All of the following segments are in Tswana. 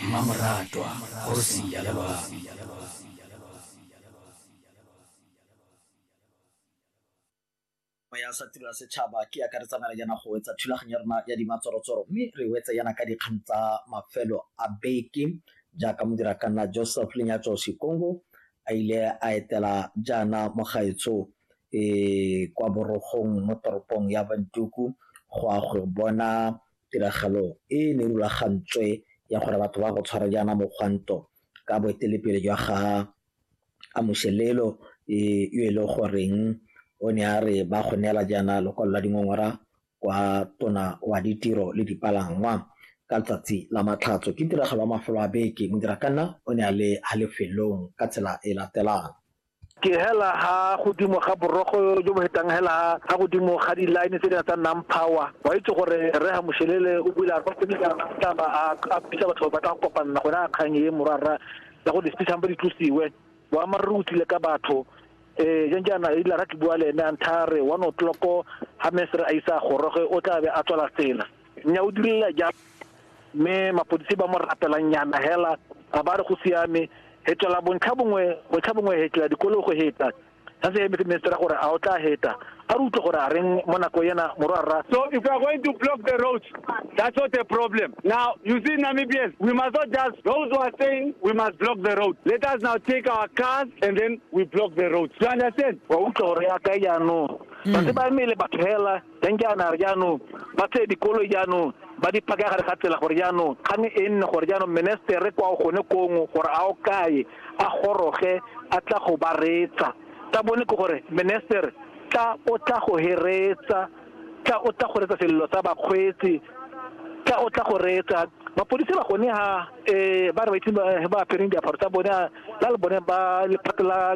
mmamoratwa kgosi ya lelwang ya sa tiro ya setšhaba ke akaretsana le yana go wetsa thulaganyo ya rona ya dimatsorotsoro mme re wetse yana ka dikgang tsa mafelo a beke jaaka modira ka nna joseph lenyatso sekongo a ile a etela jaana mogaetsho um kwa borogong mo toropong ya bantuku go a go bona Tiragalo e ne e rulagantswe ya gore batho ba go tshwara jaana mogwanto ka boetelepele jwa ga Amoxelelo e yo e le goreng o ne a re ba go neela jaana lokwalo la dingongora kwa tona wa ditiro le dipalangwa ka letsatsi la Matlhatso. Ke tiragalo ya mafelo a beke, Modirakanna o ne a le ha lefelong ka tsela e latelang. ke hela ha godimo ga borogo jo bo hetang hela ha godimo ga di-line tse di tsa nang power wa itse gore re ga moshelele o bula taba a bisa batho ba tla kopanna gone a kgang e morara ya go di-speechang ba di tlosiwe boammaaruri o tlile ka batho um jang jaana e lara ke bua le ene a ntha re one o'clock ga mesere a isa goroge o tla be a tswala tsela nya o direla ja mme mapodisi ba mo rapelang nyana hela ga ba re go siame hetela bontlha bongwe bontlha bongwe hetela dikolo go heta sa se emetse minister gore a o tla heta a re utlwe gore a reng mo nako ena morwarra so if you are going to block the roads that's not a problem now you see namibians we must not just those who are saying we must block the road let us now take our cars and then we block the roads you understand wa utlwe gore ya ka jaanong ba se ba emele batho hela Teng ke a nare jaanong ba tseye dikoloi jaanong ba di phakaya gare ga tsela gore jaanong kgang e nne gore jaanong menestere kwa o gone kongwe gore a o kae a goroge a tla go ba reetsa tsa bone ke gore menestere tla o tla go heretsa tla o tla go reetsa selelo sa bakgweetsi tla o tla go reetsa mapodisi ba gone ha um ba re ba itse ba apereng diaparo tsa bone la le bone ba lephata la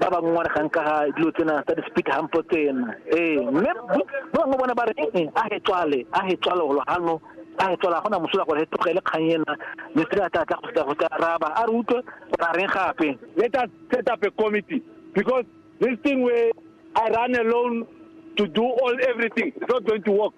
ba ba ngongang ka ga dilo tsena tsa di-speed hump tsena ee mme ba bangwe bona ba re ee a he tswale a he tswale golo gano a he tswala gona mosola gore he tlogele kgang ena mistri a tla tla go tla go tla raba a re utlwe gore a reng gape let us set up a committee because this thing where i run alone to do all everything it's not going to work